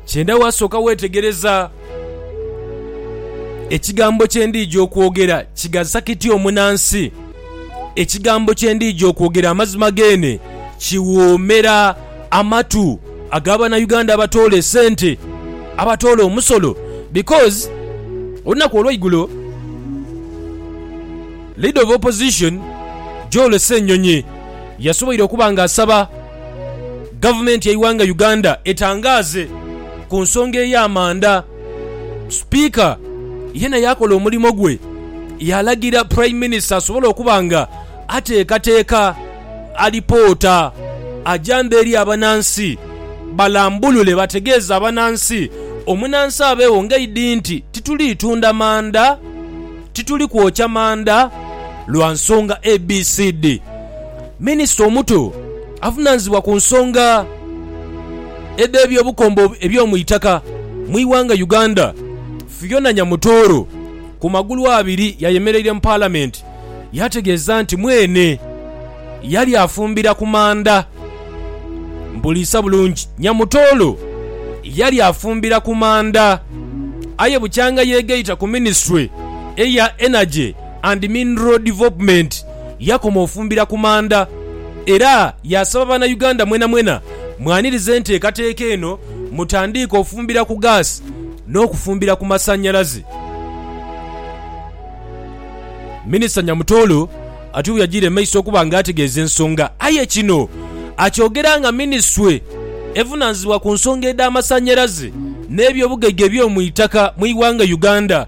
Kyenda wasooka weetegereza ekigambo kye ndiija okwogera kigasa kiti omunansi. Ekigambo kye ndiija okwogera amazima geene kiwoomera amatu ag'abanauganda abatoola esente, abatoola omusolo because olunaku olweigulo leader of opposition Joel Ssenyonyi yasoboire okuba nga asaba Gavumenti y'eighanga Uganda etangaaze ku nsonga ey'amanda. Sipiika yena yaakola omulimo gwe, yaalagira Prime Minister asobole okuba nga ateekateeka alipoota ajambe eri abanansi balambulule bategeeze abanansi omunansi abeewo ng'aidhi nti tituli tunda manda, tituli kwokya manda lwa nsonga ABCD. Minisita omuto avunanizibwa ku nsonga edh'ebyobukombo eby'omu itaka mu ighanga Uganda, Phiona Nyamutooro ku magulu abiri yayemereire mu palamenti yategeeza nti mwene yali afumbira ku manda Mpuliisa bulungi Nyamutooro yali afumbira ku manda aye bukyanga yeegaita ku minisitule eya Energy and Mineral Development. yakoma ofumbira ku manda era yaasaba Bannayuganda mwenamwena mwanirize enteekateeka eno mutandiike ofumbira ku gaasi n'okufumbira ku masannyalaze. Minisita Nyamutoro atyo bweyagiire mu maiso okuba nga ategeeza ensonga aye kino akyogera nga minisitule evunaanyizibwa ku nsonga edh'amasannyalaze n'ebyobugaiga eby'omu itaka mu ighanga Uganda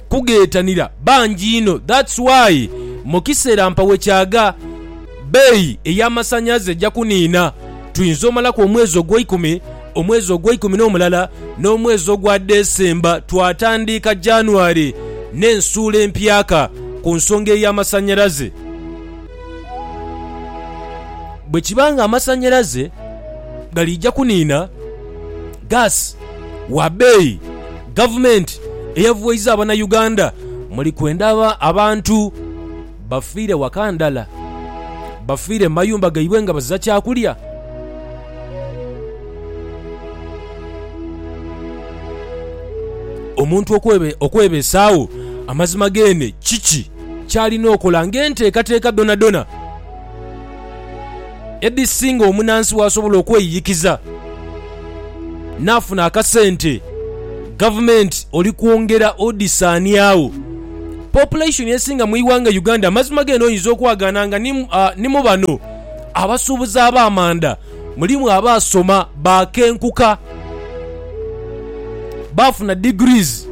kughetanira bangi inho that's why mukisera mpa wekyaga beeyi eya masanyaze eja kuniina tuyinza omalaku omwezi ogweikumi, omwezi ogweikumi nomulala nomwezi ogwa December twatandiika January nensuula empyaka kunsonga eya masanyalaze. Bwekiba nga amasanyalaze galija kuniina. Gas wa beeyi, Gavumenti eyavwaiza abanauganda muli kwenda abantu bafiire waka ndhala bafiire mu mayumba gaibwe nga baziza kyakulya. Omuntu okwebeesaagho amazima geene kiki kyalina okola ng'enteekateeka dhonadhona? edhisinga omunaansi w'asobola okweyiyikiza n'afuna akasente, gavumenti oli kwongera odhisaaniagho. Population esinga mu ighanga Uganda. Amazima g'eno oyinza okwagaana nga ni mu bano abasuubuzi ab'amanda mulimu abaasoma baakenkuka, baafuna degrees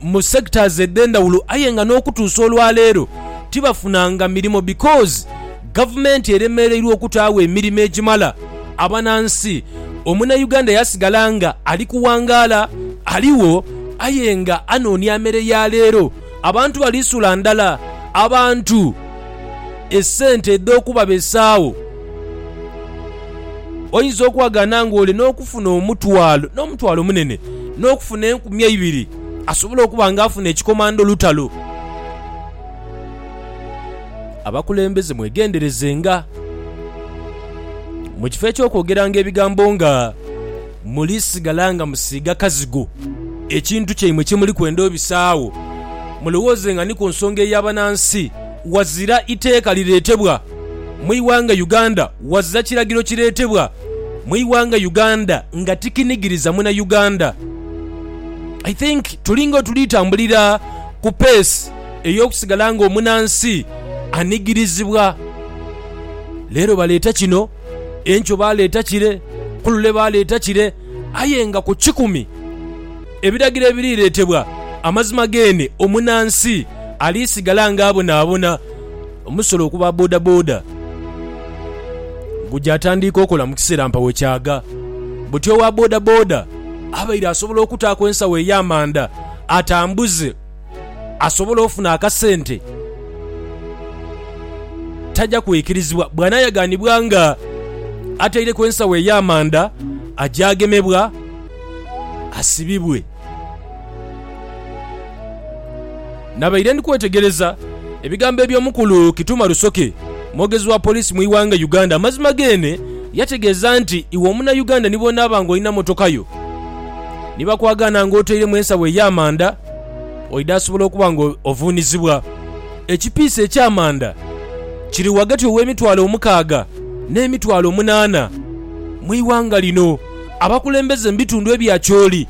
mu sectors edh'endhawulo aye nga n'okutuusa olwaleero tibafunanga mirimo because gavumenti eremereirwa okutaagho emirimo egimala abanansi. Omunauganda yasigala nga ali kuwangaala aligho aye nga anoonia mere ya leero. Abantu bali sula ndala. Abantu. esente edh'okubabesagho. Oinza okwagana ng'oli n'okufuna omutwalo, n'omutwalo munene, n'okufuna enkumi eibiri. Asobola okuba ng'afuna ekikomando lutalo. Abakulembeze mwegenderezenga. Mu kifo eky'okwogeranga ebigambo nga. muli sigala nga musiiga kazigo ekintu kyaimwe kye muli kwenda obisaagho, mulowoozenga ni ku nsonga ey'abanansi. Wazira iteeka lireetebwa mu ighanga Uganda, wazira kiragiro kireetebwa mu ighanga Uganda nga tikinigiriza muna Uganda. I think tulinga otuli tambulira ku pace ey'okusigala nga omunansi anigirizibwa. Leero baleeta kino. Enkyo baaleeta kire, ku lule baaleeta kire, aye nga ku kikumi ebiragiro ebiriretebwa, amazima geene omunansi alisigala nga abonaabona. Omusolo okuba bodaboda guja tandiika okola mu kiseera mpawo kyaga, buti owa bodaboda abaire asobola okutaaku ensawo ey'amanda atambuze. asobole ofuna akasente, taja kwikirizibwa. Bw'anaayaganibwa nga ataireku ensawo ey'amanda, aja agemebwa asibibwe. Nabaire ndi kwetegereza ebigambo eby'omukulu Kituma Rusoke, mwogezi wa poliisi mu ighanga Uganda. Amazima geene yategeeza nti iwe omunayuganda ni bw'onaaba ng'olina mmotoka yo ni bakwagaana ng'otairemu ensawo ey'amanda, Oidha asobola okuba nga ovuunizibwa. Ekipiisi eky'amanda kiri ghagati ow'emitwalo omukaaga n'emitwalo omunaana mu ighanga lino. Abakulembeze mu bitundu ebya Acholi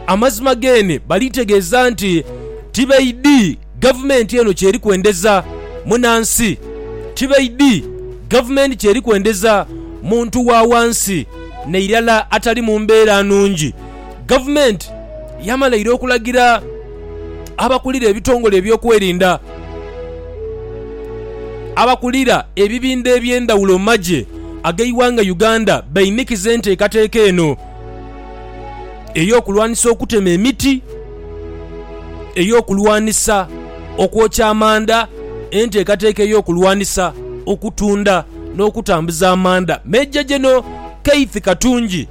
amazima geene baliitegeeza nti tibaidhi gavumenti eno ky'eri kwendeza munansi, tibaidhi gavumenti ky'eri kwendeza muntu wa wansi nairala atali mu mbeera nungi. Gavumenti yamala ira okulagira abakulira ebitongole ebyokwerinda, abakulira ebibindha eby'endhawulo mu magye ag'eighanga Uganda bainikize enteekateeka eno ey'okulwanisa okutema emiti, ey'okulwanisa okwokya amanda, enteekateeka ey'okulwanisa okutunda n'okutambuza amanda. Major General Keith Katungi.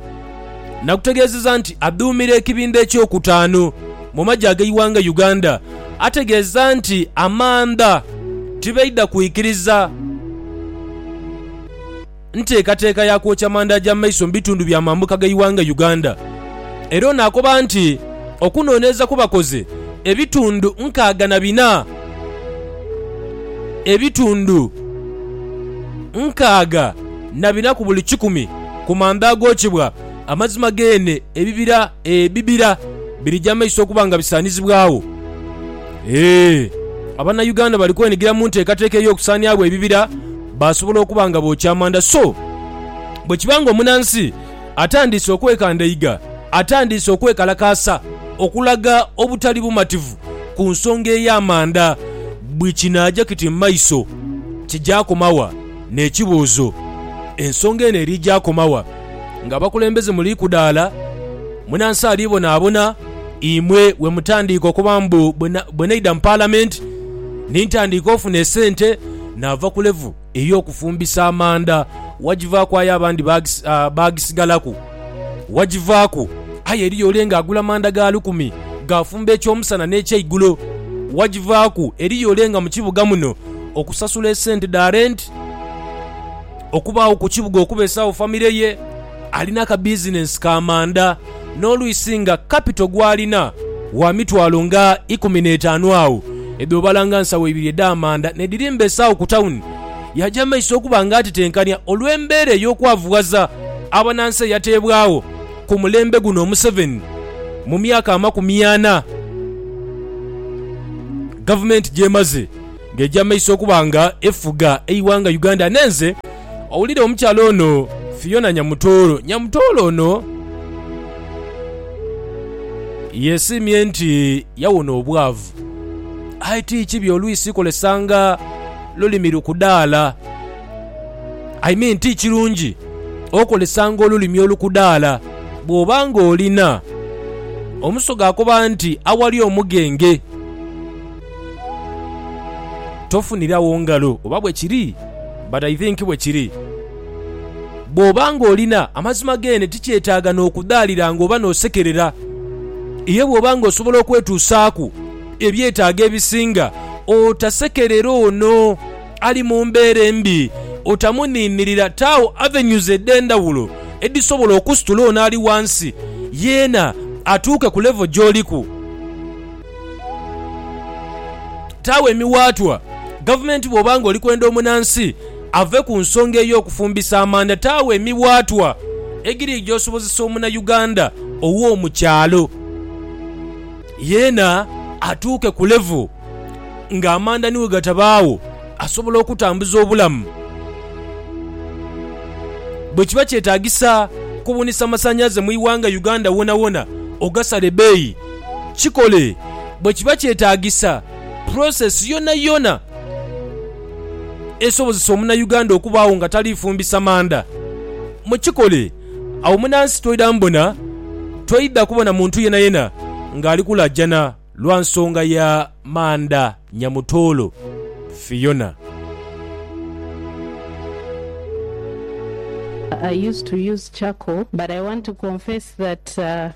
Nakutegeezeza nti aduumira ekibinda ekyokutaanu mu magye ag'eighanga Uganda ategeeza nti amanda tibaidha kwikiriza nteekateeka ya kwokya manda agya mu maiso mu bitundu bya mambuka g'eighanga Uganda era ono akoba nti okunonereza kwebakoze ebitundu nkaaga na bina ebitundu nkaaga na bina ku buli kikumi ku manda agokyebwa, amazima geene ebibira ebibira birija amaiso okuba nga bisaanizibwagho. Ee, Abanauganda bali kwenigira mu nteekateeka ey'okusaaniagho ebibira baasobola okuba nga bookya amanda. So bwe kiba nga omunansi atandiise okwekandaiga, atandiise okwekalakaasa okulaga obutali bumativu ku nsonga ey'amanda, buli kinaaja kiti mu maiso kija koma wa? N'ekibuuzo, Ensonga eno eri ja koma wa? Nga abakulembeze muli kudaala, munansi ali bonaabona imwe we mutandiika okuba mbu bwe naidha mu Palamenti ni ntandiika ofuna esente naava ku levu ey'okufumbisa amanda wagivaaku aye abandi baagisigalaku. Wagivaaku, aye eriyo ole nga agula manda ga lukumi, gaafumba eky'omusana n'ekyeigulo. Wagivaaku, eriyo ole nga mu kibuga muno okusasula esente dha renti, okubaagho ku kibuga okubeesawo famire ye, alina ka bizinensi ka manda, n'olwisi nga kapito gw'alina wa mitwalo nga ikumi n'etaanu agho edho obalanga nsawo ibiri edh'amanda n'edhiri mbeesawo ku tawuni. Yaja mu maiso okuba nga atetenkania olw'embeera ey'okwavughaza abanansi eyateebwagho ku mulembe guno Museveni mu myaka amakumi ana gavumenti gy'emaze ng'eja mu maiso okuba nga efuga eighanga Uganda. Nenze owulire omukyala ono Phiona Nyamutooro. Nyamutooro ono yesiimye nti yawona obwavu aye ti kibi olwisi kolesanga Lulimi lukudaala, I mean ti kirungi okozesanga olulimi olukudaala bw'oba ng'olina omusoga akoba nti awali omugenge tofunirawo ngalo. Oba bwe kiri? But I think bwe kiri. Bw'oba ng'olina amazima geene tikyetaaga n'okudaalira ng'oba n'osekerera. Ye bw'oba ng'osobola okwetuusaaku. ebyetaago ebisinga, otasekerera ono ali mu mbeera embi, otamuniinirira. Taagho avenues edh'endhawulo edhisobola okusitula ono ali ghansi yeena atuuke ku level gy'oliku. Taagho emiwaatwa gavumenti bw'oba nga oli kwenda omunansi ave ku nsonga ey'okufumbisa amanda. Taagho emiwaatwa egiriigya osobozesa omunayuganda ow'omu kyalo. Yeena atuuke ku level nga amanda ni wegatabaagho asobola okutambuza obulamu. Bwekiba kyetagisa kubunisa masanyaze mu ighanga Uganda wonawona ogasale beeyi, kikole. Bwekiba kyetagisa process yonayona esobozesa omunauganda okubaagho nga talifumbisa manda, mukikole. Agho munansi toidha mbona, toidha kubona muntu yenayena ng'ali kulajana lwa nsonga ya manda nyamutoolo Fiona.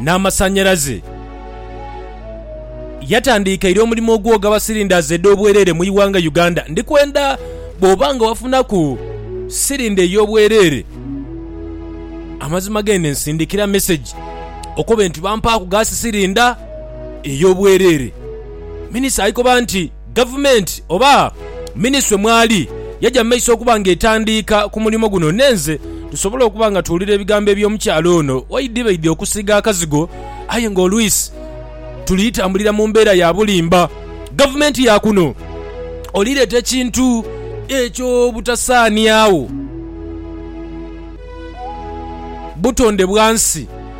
n'amasanhalaze. Yatandiikaire omulimu ogwogaba silindazi edh'obwereere mu ighanga Uganda. Ndi kwenda bw'oba nga wafunaku silinda ey'obwereere, amazima gende nsindikira mesegi okobe nti bampaaku gaasi silinda ey'obwereere. Minisita aikoba nti. Gavumenti oba minisitule mwali yaja mu maiso okuba nga etandiika ku mulimo guno n'enze tusobole okuba nga tuwulira ebigambo eby'omukyala ono waidhibaidhi okusiiga akazigo aye nga olwisi tuli tambulira mu mbeera ya bulimba. Gavumenti ya kuno oli leeta ekintu eky'obutasaaniagho butonde bwa nsi.